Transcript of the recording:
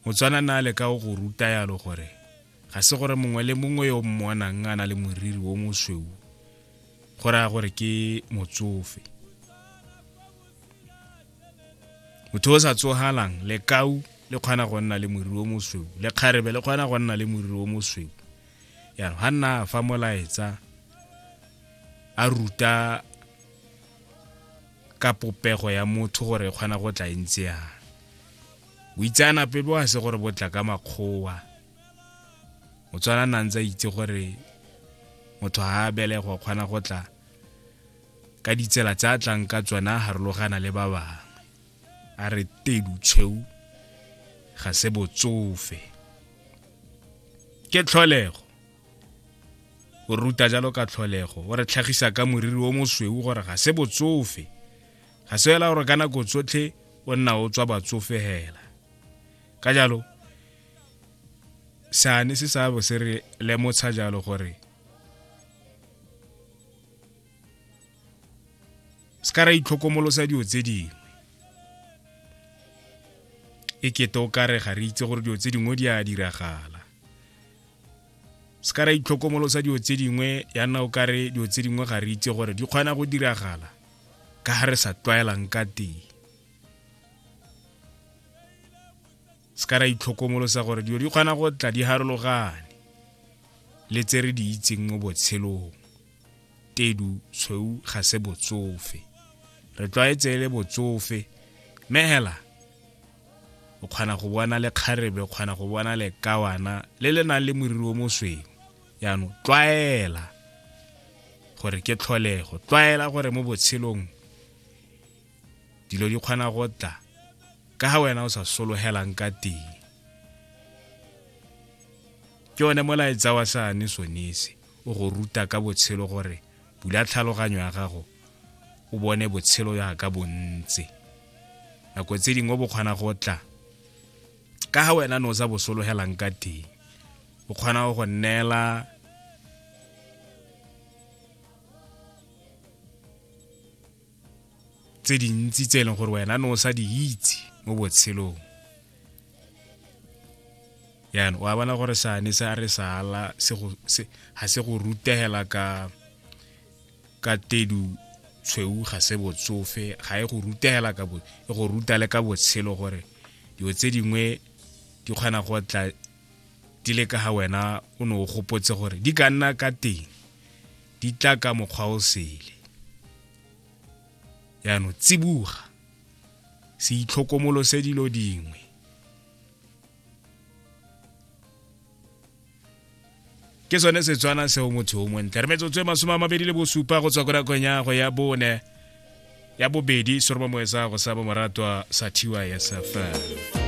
motswana na le ka o go ruta yalo gore ga se gore mongwe le mongwe yo mmonang a na le moriri o mosweu go raya gore ke motsofe motho o sa tsogalang lekau le kgona go nna le moriri o mosweu lekgarebe le kgona go nna le moriri o mosweu yalo ga nna fa molaetsa a ruta ka popego ya motho gore e kgona go tla e ntse yana boitseanape bo a se gore bo tla ka makgowa motswana na ntse a itse gore motho ga a belegwa o kgona go tla ka ditsela tse a tlang ka tsona a harologana le ba bangwe a re tedu tshweu ga se botsofe ke tlholego o ruta jalo ka tlholego o re tlhagisa ka moriri o mosweu gore ga se botsofe ga se fela gore ka nako tsotlhe o nna o tswa batsofe hela ka jalo sane se sa bo se re lemotsha jalo gore se ka ra itlhokomolosa dilo tse dingwe e kete o kare ga re itse gore dilo tse dingwe di a diragala se ka ra itlhokomolosa dilo tse dingwe ya nna o kare dilo tse dingwe ga re itse gore di kgona go diragala ka ga re sa tlwaelang ka teng se ka ra itlhokomolosa gore dilo di kgona go tla di harologane le tse re di itseng mo botshelong tedu tshweu ga se botsofe re tlwaetse e le botsofe mme hela o kgona go bona le kgarebe o kgona go bona le kawana le le nang le moriri o mosweu jaanong tlwaela gore ke tlholego tlwaela gore mo botshelong dilo di kgona go tla ka ga wena o sa sologelang ka teng ke one molaetsa wa sane sonese o go ruta ka botshelo gore bula tlhaloganyo ya gago o bone botshelo yaka bontse nako tse dingwe bo kgona go tla ka ga wena ne o sa bo sologelang ka teng o kgona go go neela tse dintsi tse e leng gore wena ne o sa di itse mo botshelong yana wa bona gore sane se a re sala ga se go rutegela ka ka tedu tshweu ga se botsofe ga e go rutegela ka bo e go ruta le ka botshelo gore dilo tse dingwe di kgona go tla di le ka ga wena o ne o gopotse gore di ka nna ka teng di tla ka mokgwa o sele yaanong tsibuga se itlhokomolose dilo dingwe ke sone setswana seo motho o montle re metsotso e masome a mabedi le bosupa go tswa ko nakong ya go ya bone ya bobedi soroba moesa go sa bomoratwa sa tysfm